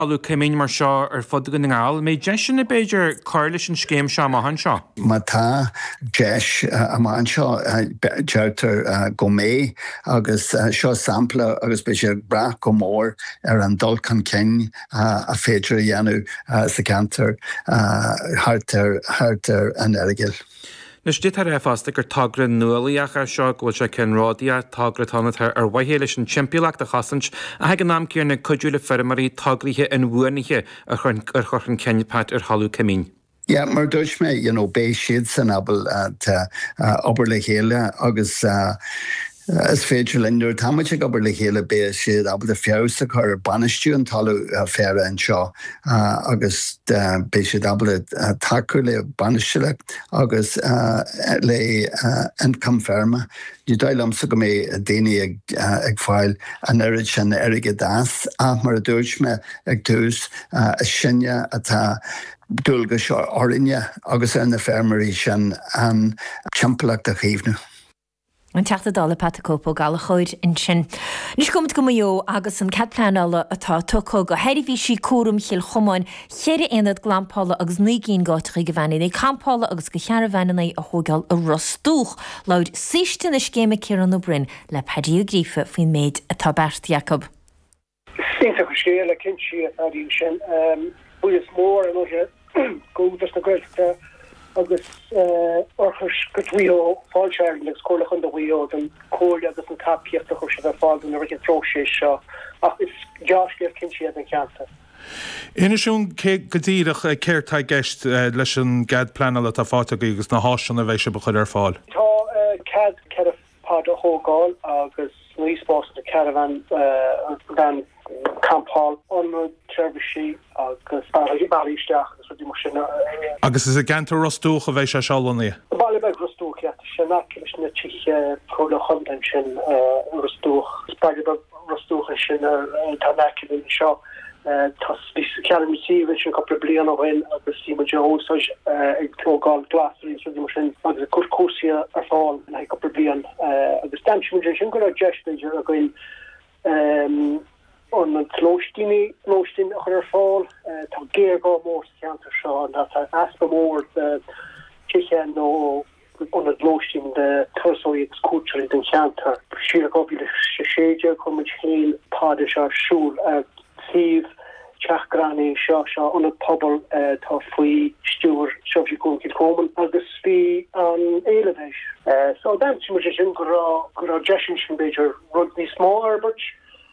scéim mar seo ar fud Dhún na nGall. An mbeidh deiseanna, b'fhéidir, cur leis an scéim seo amach anseo. Má tá deis amach anseo, deirtear go mbeidh, agus seo sampla agus beidh sé ag brath go mór ar an dul chun cinn is féidir a dhéanamh sa cheantar thart ar an Earagail. Maítear fosta gur togra nuálaíoch atá anseo, go bhfuil sé ceannródaíoch, togra atá ann atá ar mhaithe leis an timpeallacht a chosaint ach ag an am céanna ag cuidiú le feirmeoirí tograí inbhuanaithe a chur chun cinn, Pat, ar thalamh coimín. Yeah, mar a dúirt mé, you know, beidh siadsan ábalta obair le chéile agus. Is féidir linn, nuair atá muid ag obair le chéile, beidh siad ábalta feabhas a chur ar bhainistiú an talamh féaraigh anseo agus beidh siad ábalta tacú le bainistiú agus le ioncam feirme. Ní dóigh liomsa go mbeidh daoine ag fáil an oiread sin airgid as ach, mar a dúirt mé ag tús, is sinne atá dualgais orainne agus ar na feirmeoirí sin an timpeallacht a chaomhnú. An Teachta Dála Pat 'The Cope' Ó Gallchóir ansin. Anois gabhaimid go Maigh Eo agus an cead pleanála atá tugtha do Sheirbhísí Cúraim Chill Chomáin, cheithre aonad glampála agus naoi gcinn d'áiteachaí do veaineanna campála agus do charbháin a thóigeáil i Ros Dumhach. Labhair saoiste na scéime Ciarán Ó Broin le Pádaic Ó Gríofa faoin méid atá beartaithe acu. Is iontach an scéal é cinnte don cheantar sin. Buíochas mór le hÚdarás na Gaeltachta agus Oirthuaisceart Mhaigh Eo, Fáilte Ireland agus Comhairle Chondae Mhaigh Eo don comhairle agus an tacaíocht a chuir siad ar fáil dúinn i rith an phróiseas seo ach is dea-scéal cinnte é don cheantar. Inis dúinn go díreach céard tá i gceist leis an gcead pleanála atá faighte agaibh agus na háiseanna a bheidh sibh a chur ar fáil. Tá cead ceithre pod a thógáil agus naoi spás do charbháin campála, ionad seirbhísí agus bealaí isteach agus rudaí mar sin. Agus is i gceantar Ros Dumhach a bheidh sé seo lonnaithe. Baile beag Ros Dumhach iad, tá sé in aice leis na tithe tabhairne chontae ansin i Ros Dumhach. Is baile beag Ros Dumhach é sin atá in aice linn anseo. Cheannaigh muid an suíomh ansin cúpla bliain ó shin agus bhí muid á úsáid ag tógáil glasraí is rudaí mar sin agus ag cur cúrsaí ar fáil le haghaidh cúpla bliain agus d'aimsigh muid ansin go raibh deis b'fhéidir againn an lóistíní lóistín a chur ar fáil. Tá géarghá mór sa cheantar seo, tá easpa mór de tithe nó ionad lóistín do thurasóirí agus cuairteoirí don cheantar. Siar i 2016 chuir muid féin pods ar siúl ar suíomh Teach Greannaí seo, so ionad pobail atá faoi stiúir Seirbhísí Cúraim Chill Chomáin agus bhí an-éileamh air. So d'aimsigh muid ansin go raibh go raibh deis ansin b'fhéidir rud níos mó a fhorbairt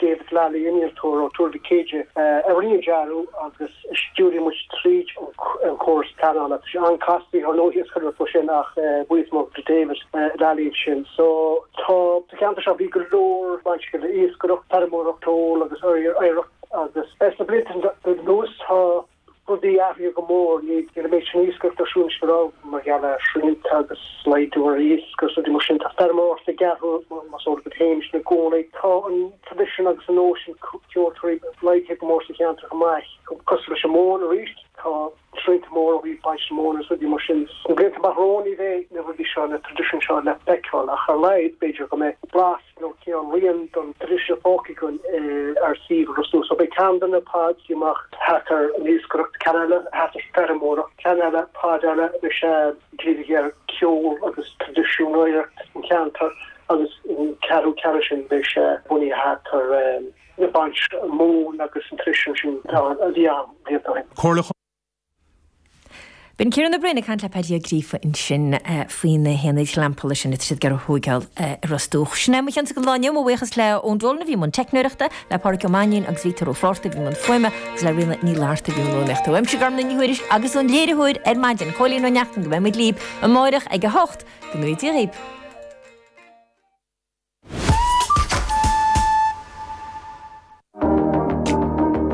David Lally, innealtóir ó Tuar Mhic Éadaigh, a rinne an dearadh agus a stiúraigh muid tríd an chóras pleanála. Tá sé an-casta, bhí ár ndlúthdhiosca roimh sin ach buíochas mór do David Lally ansin. Sa cheantar seo bhí go leor bainteach le iascaireacht, feirmeoireacht, ceol agus oidhreacht agus sna blianta anuas tá rudaí athraithe go mór. Níl an méid sin iascaireacht ar siúl anois go raibh, mar gheall ar shrianta agus laghdú ar iasc agus rudaí mar sin. Tá feirmeoireacht ag athrú, mar is eol duit féin, anois i gcónaí. Tá an traidisiún agus an nós sin ceoltóirí laghdaithe go mór sa cheantar chomh maith, cosúil leis an mhóin arís. Tá srianta móra ó thaobh baint na móna agus rudaí mar sin. Sna blianta amach romhainn ní bheidh na rudaí seo, na traidisiúin seo le feiceáil ach ar a laghad b'fhéidir go mbeidh blas, nó cineál rian den traidisiún fágtha againn ar shuíomh Ros Dumhach. Beidh ceann de na Paid amach thart ar an iascaireacht, ceann eile, thart ar feirmeoireacht, ceann eile, Paid eile agus é dírithe ar cheol agus traidisiúnaíocht an cheantair agus an ceathrú ceann ansin beidh sé bunaithe thart ar na baint móin agus an traidisiún sin a bhí ann blianta ó shin. Comhairle Chontae. B'in Ciarán Ó Broin ag caint le Paddy Ó Gríofa ansin faoi na haonaid ghlampála sin a bhfuil siad ag iarraidh a thógáil i Ros Dumhach. Sin é mo chionsa don lá inniu, mo bhuíochas le Eoin Dolan a bhí i mbun teicneoireachta, le Pádraig Ó Mainnín agus Victor Ó Flaithearta a bhí i mbun fuaime agus le Ríona Ní Fhlatharta a bhí i mbun rúnaíochta. Uaimse Gormfhlaith Ní Thuairisg agus ón léiritheoir ar maidin, Cóilín Ó Neachtain, go mbeidh muid libh amáireach ag a hocht. Go ngnóthaí Dia daoibh.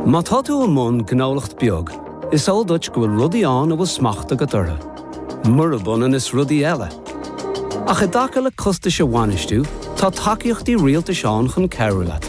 Má tá tú i mbun gnólacht beag, is eol duit go bhfuil rudaí ann a bhfuil smacht agat orthu, murab ionann is rudaí eile. Ach i dtaca le costais a bhainistiú, tá tacaíochtaí rialtais ann chun cabhrú leat.